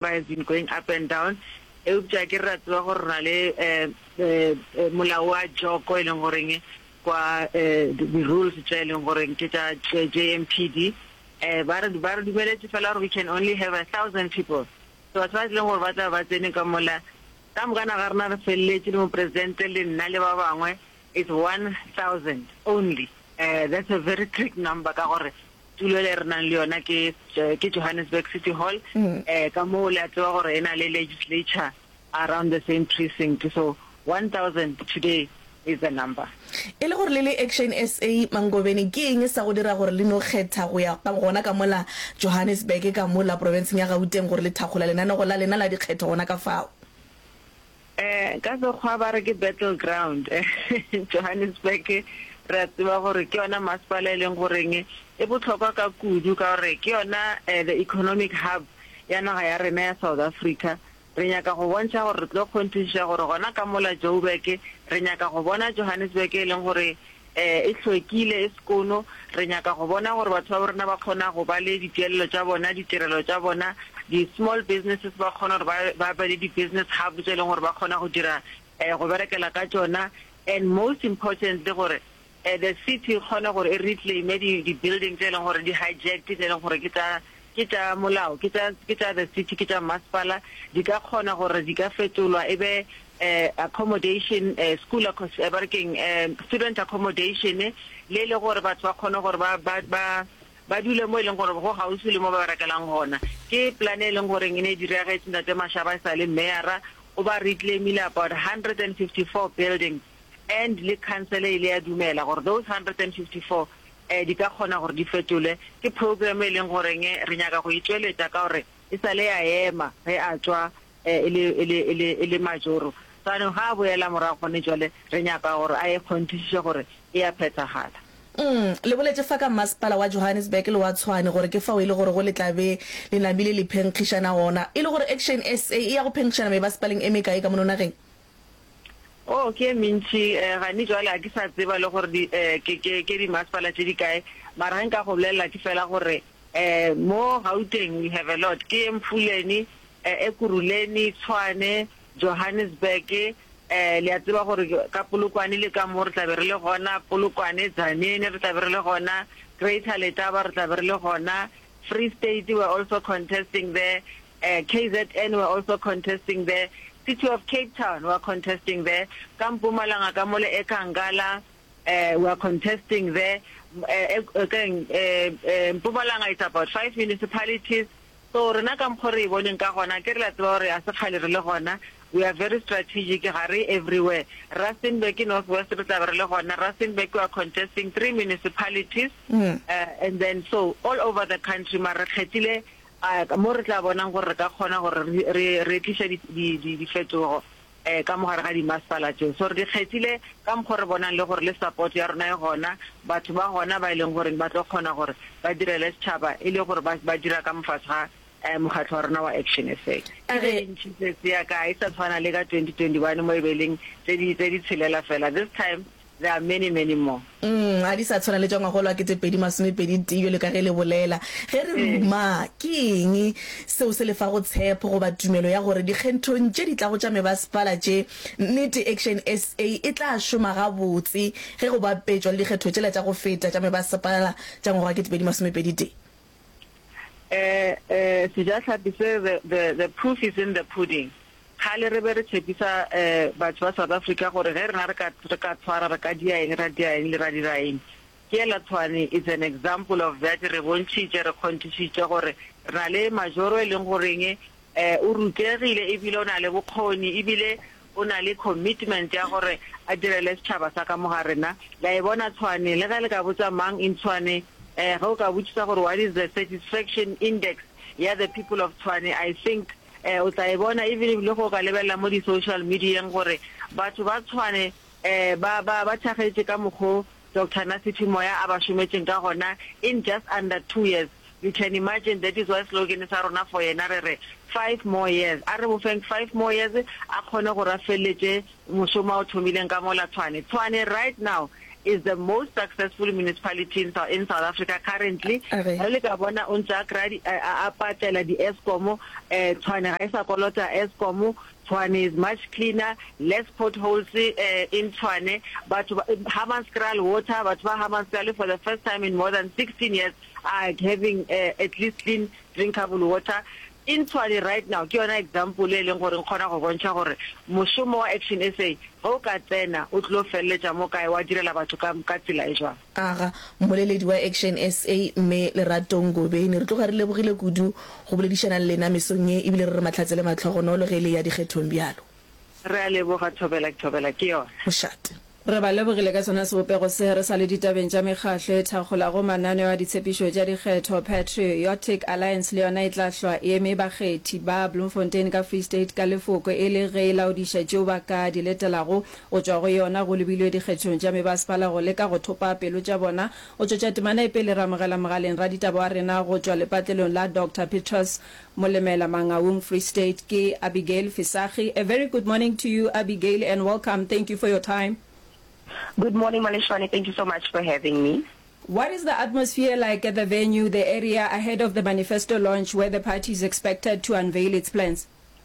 I have been going up and down eupša ke re ra tseba gore re na le molao wa joko e leng goreng kwa di rules tša e leng goreng ke tša JMPD ba re ba re dumeletše fela gore we can only have a thousand people so batho ba tlileng gore ba tla ba tsene ka mola ka moka na ga rena re feleletše le mopresidente le nna le ba bangwe is one thousand only that's a very trick number ka gore Tulo e re nang le yona ke ke Johannesburg City Hall eh ka moo le a tseba gore e na le legislature around the same precinct so 1000 today is the number. E le gore le le Action SA Mangobeni ke eng sa go dira gore le no kgetha go ya gona ka mola Johannesburg ka mola profenseng ya Gauteng gore le thakgola lenanego la lena la dikgetho gona ka fao? Ka Sekgowa ba re ke battle ground. Johannesburg re a tseba gore ke yona masepala e leng goreng e bohlokwa ka kudu ka gore ke yona the economic hub ya naga ya rena ya South Africa. Re nyaka go bontšha gore re tlo kgonthišiša gore gona ka mola Joburg re nyaka go bona Johannesburg e leng gore e hlwekile, e sekono. Re nyaka go bona gore batho ba bo rena ba kgona go ba le dituelelo tša bona, ditirelo tša bona, di-small businesses ba kgona gore ba be le di-business hub tše e leng gore ba kgona go dira, go berekela ka tšona and most importantly gore the city e kgone gore e reclaim-e di-building tše e leng gore di-hijacked tše e leng gore ke tša Ke tša molao, ke tša, ke tša the city, ke tša mmasepala, di ka kgona gore di ka fetolwa e be eh, accommodation, eh, school accos-, eh, ba re keng, eh, student accommodation, le e le gore batho ba kgone gore ba, ba, ba, ba dule mo e leng gore go gaufi le mo ba berekelang gona. Ke plan e leng goreng e ne e diragetse ntate Mashaba e sa le mayora, o ba reclaimile about 154 buildings and le council e ile ya dumela gore those 154 Di ka kgona gore di fetolwe. Ke program e leng gore re nyaka go e tšweletša ka gore e sa le ya ema ge a tšwa e le, e le, e le, e le majoro. Jaanong ga a boela morago gone jwale re nyaka gore a e kgonthišiše gore e a phethagala. Umm, le boletše fa ka Mmasepala wa Johannesburg le wa Tshwane gore ke fao e le gore go le tla be le namile le phenkgišana gona. E le gore Action SA e ya go phenkgišana mebasepaleng e mekae ka mono nageng? Oh, ke e mentši, eh, gane jwale ga ke sa tseba le gore di, eh, ke, ke, ke dimasepala tše di kae, mara ge nka go bolelela ke fela gore, eh, mo Gauteng we have a lot, ke Emfuleni, eh, Ekurhuleni, Tshwane, Johannesburg, eh, le a tseba gore ka Polokwane le ka mo re tla be re le gona, Polokwane, Tzaneen re tla be re le gona, Greater Letaba re tla be re le gona, Free State we are also contesting there, KZN were also contesting there, City of Cape Town were contesting there, ka Mpumalanga ka mole Ekankala were contesting there, keng Mpumalanga it's about five municipalities, so rena ka mokgo re e boneng ka gona akere le a tseba gore ga se kgale re le gona, we are very strategic ga re everywhere, Rustenburg ke North West re tla be re le gona, Rustenburg were contesting three municipalities and then so all over the country mara re kgethile A Ka moo re tla bonang gore re ka kgona gore re re tliša di di di difetogo eh ka mogare ga dimasepala tšeo. So re di kgethile ka mokgo re bonang le gore le support ya rona e gona, batho ba gona ba e leng goreng ba tlo kgona gore ba direle setšhaba e le gore ba ba dira ka mofase ga eh mokgatlo wa rona wa Action SA. Ke tše dintši tsetse ya ka, ha e sa tshwana le ka 2021 mo e be e leng tse di tse di tshelela fela this time. There are many, many more. Umm, ga di sa tshwana le tša ngwaga o lwa kete pedi masome pedi tee bjalo ka ge le bolela. Ge re re umaa, ke eng seo se le fago tshepo goba tumelo ya gore dikgenthong tše di tlago tša mebasepala tše, nnete Action SA e tla šoma gabotse ge go bapetšwa le dikgetho tšela tša go feta tša mebasepala tša ngwaga wa kete pedi masome pedi tee? Eh, eh, Sejahlapi se, the, the, the proof is in the pudding. Kgale re be re tshepisa eh, batho ba South Africa gore ge rena re ka, re ka tshwara, re ka dia eng, ra dia eng, le ra dira eng. Ke ela Tshwane is an example of that, re bontšhitše, re kgonthišitše gore re na le majoro e leng goreng eh, o rutegile ebile o na le bokgoni ebile O na le commitment ya gore a direle setšhaba sa ka mo ga rena. Le a e bona Tshwane? Le ge le ka botša mang in Tshwane, eh, ge o ka botšiša gore what is the satisfaction index ya the people of Tshwane, I think, eh, o tla e bona even if le ge o ka lebelela mo di-social medieng gore batho ba Tshwane, eh, ba, ba, ba thakgetše ka mokgo Doctor na Siphi moya a ba šometšeng ka gona in just under two years you can imagine that is why slogan sa rona for yena re re five more years a re mo feng five more years a kgone gore a feleletše mošomo a o thomileng ka mola Tshwane Tshwane right now is the most successful municipality in South, in South Africa currently Okay. re le ka bona o ntse a kry-a di- a a- a patlela di-escom eh, tshwane ga e sa kolota escom Tshwane is much cleaner, less potholes in Tshwane, batho ba Hammanskraal water, batho ba Hammanskraal for the first time in more than 16 years are having at least clean drinkable water in Tshwane right now. Ke yona example e leng gore nkgona go bontšha gore mošomo wa Action SA ge o ka tsena o tlilo feleletša mo kae, wa direla batho ka tsela e jwang. Aga, mmoleledi wa Action SA, Mme Lerato Ngobeni. Re tloga re lebogile kudu go boledišana le lena mesong ye ebile re re mahlatse le matlhogonolo ge e le ya dikgethong bjalo. Re a leboga, Thobela Thobela ke yona. Mošate. Re ba lebogile ka sona sebopego se. Re sa le ditabeng tša mekgahlo e thakgolago mananeo a ditshepišo tša dikgetho, Patriotic Alliance le yona e tla hlwa e eme bakgethi ba Bloemfontein ka Free State ka lefoko e le ge e laodiša tšeo ba ka di letelago Go tšwa go yona go lebilwe dikgethong tša mebasepala go leka go thopa pelo tša bona. O tšwetša temana e pele ramogela mogaleng raditaba wa rena go tšwa lepatlelong la Doctor Petrus Molemela Mangaung Free State ke Abigail Fisagi. A very good morning to you Abigail and welcome thank you for your time. Good morning Maleshwane thank you so much for having me. What is the atmosphere like at the venue, the area ahead of the manifesto launch where the party is expected to unveil its plans?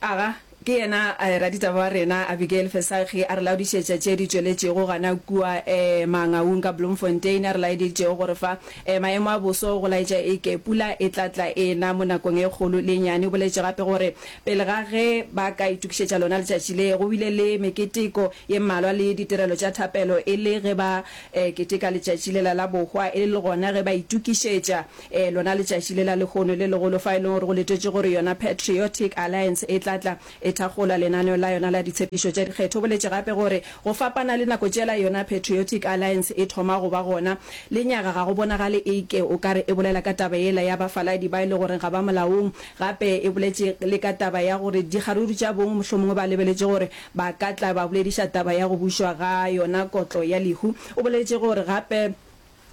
Aga, ke yena eh, raditaba wa rena Abigail Fesakgi a re laodišetša tše di tšweletšego gana kua eh, Mangaung ka Bloemfontein, a re laeditšego gore fa eh, maemo a boso go laetša e ke pula e tla tla e na mo nakong e kgolo le e nyane. O boletše gape gore pele ga ge ba ka itokišetša lona letšatši le, go bile le meketeko ye mmalwa le ditirelo tša thapelo e le ge ba eh, keteka letšatši lela la bohwa e le gona ge ba itokišetša Ee, lona letšatši lela lehono le legolo fa e lego gore go letetšwe gore yona Patriotic Alliance e tla tla e thakgola lenaneo la yona la ditshepišo tša dikgetho. O boletše gape gore go fapana le nako tšela yona Patriotic Alliance e thoma go ba gona, lenyaga ga go bonagale e ke o ka re e bolela ka taba yela ya bafaladi ba e le goreng ga ba molaong. Gape e boletše le ka taba ya gore dikgaruru tša bong mohlomongwe ba lebeletše gore ba ka tla ba bolediša taba ya go bušwa ga yona kotlo ya lehu. O boletše gore gape.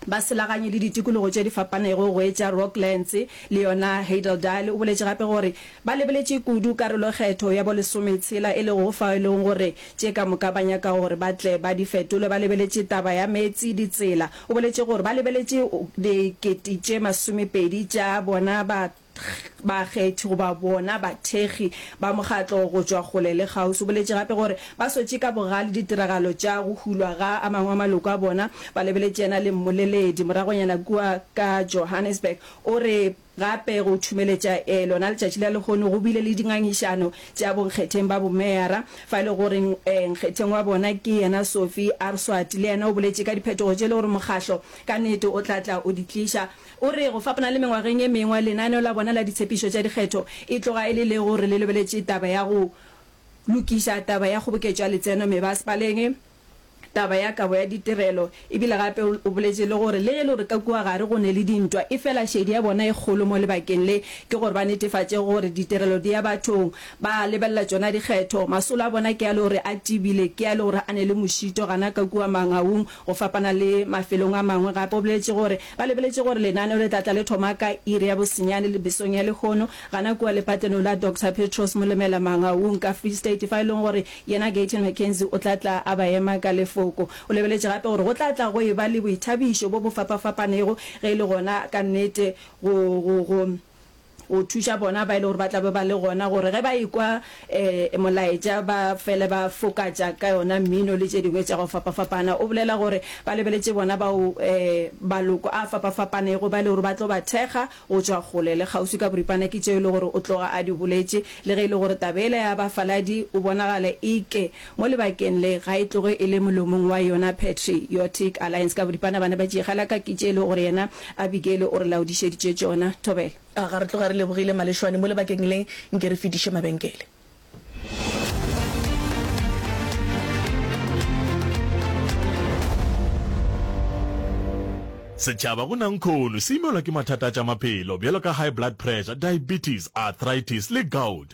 Ba selaganye le ditikologo tše di fapanego go etša Rocklands le yona Heidaldale. O boletše gape gore ba lebeletše kudu karolokgetho ya bo lesome tshela e lego fao e lego gore tše ka moka ba nyaka gore ba tle ba di fetole ba lebeletše taba ya meetse, ditsela. O boletše gore ba lebeletše dikete tše masomepedi tša bona ba. bakgethi goba bona bathekgi ba mokgatlo go tšwa kgole le kgauswi. O boletše gape gore ba swetše ka bogale ditiragalo tša go hulwa ga a mangwe a maloko a bona, ba lebeletše yena le mmoleledi. Moragonyana kua ka Johannesburg o re gape go thumeletša lona letšatši la lehono go bile le dingangišano tša bonkgetheng ba bomeyara, fa e le gore nkgetheng wa bona ke yena Sophie Arswati le yena o boletše ka diphetogo tše e le gore mokgatlo ka nnete o tla tla o di tliša. O re, Go fapana le mengwageng e mengwe, lenaneo la bona la ditshepišo tša dikgetho e tloga e le le gore le lebeletše taba ya go lokiša taba ya kgoboketšo ya letseno mebasepaleng, taba ya kabo ya ditirelo, e bile gape o boletše le gore le ge e le gore ka kua gare go ne le dintwa, efela šedi ya bona e kgolo mo lebakeng le ke gore ba netefatše gore ditirelo di ya bathong. Ba lebelela tšona dikgetho. Masolo a bona ke a le gore a tibile, ke a le gore a ne le mošito, gana ka kua mangaung, go fapana le mafelong a mangwe. Gape o boletše gore Ba lebeletše gore lenaneo le tla tla le thoma ka iri ya bosenyane le mesong ya lehono, gana kua lepatlenong la Doctor Petros Molemela Mangaung ka Free State, fa e lego gore yena Gayton McKenzie o tla tla a ba ema ka lefoko. O lebeletše gape gore go tla tla go e-ba le boithabišo bo bo fapa-fapanego ge e le gona ka nnete go, go, go. go thuša bona ba e le gore ba tla be ba le gona gore ge ba ekwa um molaetša ba fele ba fokatša ka yona mmino le tše dingwe tša go fapafapana. O bolela gore ba lebeletše bona bao um maloko a fapafapanego ba e le gore ba tlo ba thekga go tšwa kgole le kgauswi ka boripana ke tšeo e le gore o tloga a di boletše le ge e le gore taba yela ya bafaladi o bonagale e ke Mo lebakeng le, ga e tloge e le molomong wa yona Patri otic Alliance ka boripana bana ba tšeegela ka kitše e le gore yena Abigele o re laodišeditše tšona. Thobela. A ga re tloga re lebogile malešwane mo lebakeng le, nke re fediše mabenkele. Setšhaba go nankhono se imelwa ke mathata a tša maphelo bjalo ka high blood pressure, diabetes, arthritis le gout.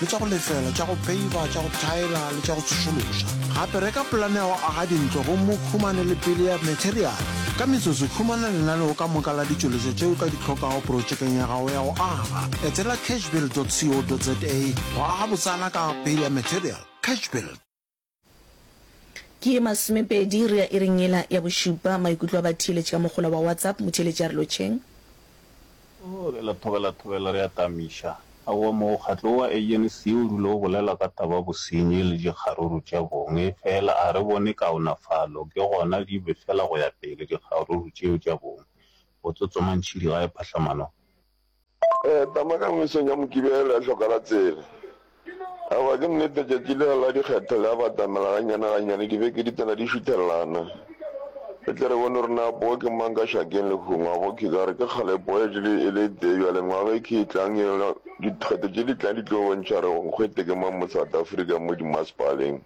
le tša go lefela, tša go peiba, tša go thaela le tša go tsošološa. Gape reka polane ya go aga dintlo gomme o humane le pele ya materiale. Ka metsotso, humana lenaneo ka moka la ditšweletšo tše o ka di hlokago protšekeng ya gago ya go aga. Etela cashbuild dot co dot za go aga botsana ka pele ya materiale. Cashbuild. Ke ye masomepedi, re ya iring yela ya bošupa. Maikutlo a batheeletši ka mohola wa WhatsApp, Motheeletši a re lotšheng. Oo, re lathobelathobela, re atamiša. Aowa, mokgatlo owa ANC o dula o bolela ka taba bosenyi le dikgaruru tša bong, efela ga re bone kaonafalo, ke gona di be fela go ya pele dikgaruru tšeo tša bong, go tsotsoma ntšhidi ga e phahlamano. Tama ka mesong ya Mokibelo ya hloka la tsela. Aowa, ke nnete tšatši lela la dikgetho le a batamela gannyane-gannyane, dibeke di tsena di šuthelelana. Re tle re bone gore na poo ke mang ka šakeng le kgong. A bokhe ka re ke kgale poo e šele e le tee bjale, ngwaga e khe e tlang e la dikgetho tše di tlang di tlo bontšha gore nkgwete ke mang mo South Africa mo dimasepaleng.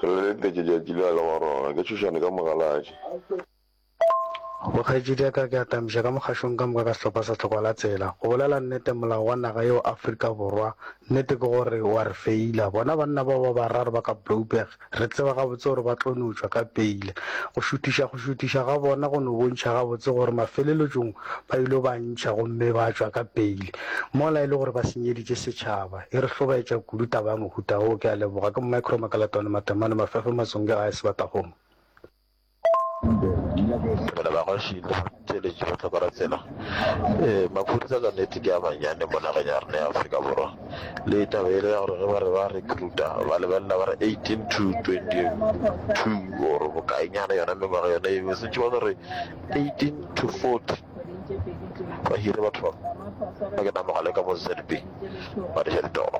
Re leletetše tšatši lela wa rona. Ke tšhošane ka mogaladi. Go kgaetšedi ya ka ke atamiša ka mokgašong ka moka ka sehlopha sa Tlhokwa la Tsela. Go bolela nnete molao wa naga yeo Afrika Borwa nnete ke gore wa re feila. Bona banna bao ba bararo ba ka Blouberg re tseba gabotse gore ba tlo no tšwa ka peile. Go šuthiša go šuthiša ga bona go no bontšha gabotse gore mafelelotšong ba yilo ba ntšha gomme ba tšwa ka peile. Mola e le gore ba senyeditše setšhaba. E re hlobaetša kudu taba ya mohuta wo. Ke a leboga. Ke Micro Makalatwane Matemane Mafefe Matsongi gae Sebatakgomo. Dumela bagoši le botšweletši bohlokwa ra tsela. Eh, maphodisa ka nete ke a manyane mo nageng ya rena ya Afrika Borwa. Le taba ele ya gore ge ba re ba recruita ba lebelela ba re 18 to 22 or bokaenyana yona mengwaga yona eo e sentše ba no re 18 to 40 ba hire batho ba ba ke namogale ka mo ZB ba diša ditoro.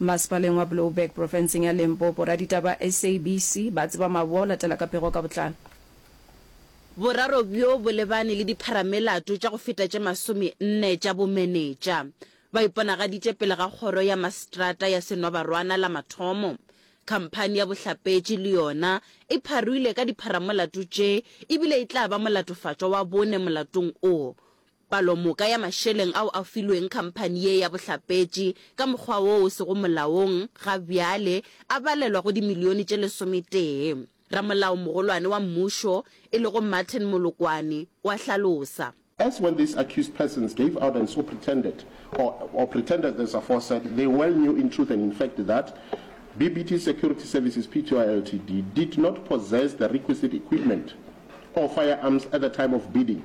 Masepaleng wa Blouberg profenseng ya Limpopo, raditaba ba SABC ba tseba maboa o latela ka pego ka botlalo. Boraro bjo bo lebane le dipharamelato tša go feta tše masome nne tša bomenetša. Ba iponagaditše pele ga kgoro ya maseterata ya Senwabarwana la mathomo. Khamphani ya bohlapetši le yona e pharoile ka dipharamolato tše e bile e tla ba molatofatšwa wa bone molatong o. Palomoka ya mašeleng ao a filweng khamphani ye ya bohlapetši ka mokgwa wo o sego molaong ga bjale a balelwa go dimilione tše lesometee. Ramolaomogolwane wa mmušo, e lego Martin Molokwane, o a hlalosa. As when these accused persons gave out and so pretended or or pretended as aforesaid, they well knew in truth and in fact that BBT Security Services Pty Ltd did not possess the requisite equipment or firearms at the time of bidding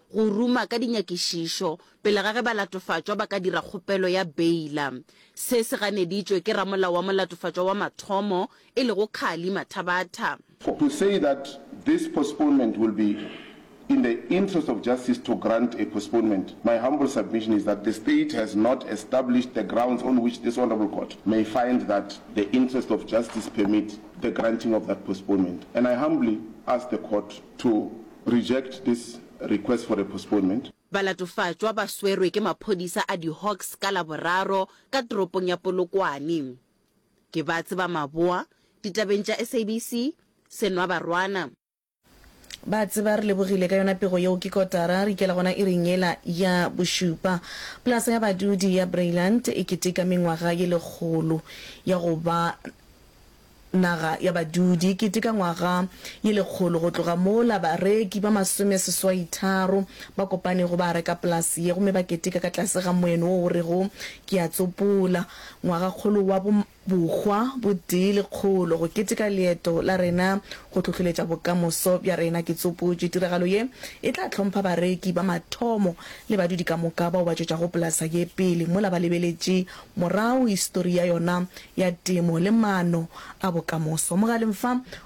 go ruma ka dinyakišišo pele ga ge balatofatšwa ba ka dira kgopelo ya beila. Se se ganeditšwe ke ramolao wa molatofatšwa wa mathomo, e lego Carly Mathabatha. For to say that this postponement will be in the interest of justice to grant a postponement, my humble submission is that the State has not established the grounds on which this Honourable Court may find that the interest of justice permit the granting of that postponement and I humbly ask the Court to reject this request for a postponement. Balatofatšwa ba swerwe ke maphodisa a di-Hawks ka Laboraro ka toropong ya Polokwane. Ke ba tseba maboa, ditabeng tša SABC, Senwa Barwana. Ba tseba re lebogile ka yona pego yeo ke kotara re ikela gona iring yela ya bošupa. Polasa ya badudi ya Breyland e keteka mengwaga ye lekgolo ya go ba. Naga ya Badudi, kete ka ngwaga ye lekgolo go tloga mola, bareki ba masomeseswaitharo ba kopane go ba reka polase ye gomme ba keteka ka tlase ga moeno wo o rego Ke a Tsopola Ngwagakgolo wa Bohwa bo Tee Lekgolo go keteka leeto la rena go hlohloletša bokamoso bja rena. Ke tsopotše tiragalo ye e tla hlompha bareki ba mathomo le badudi ka moka bao ba tšwetšago polasa ye pele mola ba lebeletše Morago, histori ya yona ya temo le maano a bokamoso. Mogaleng fa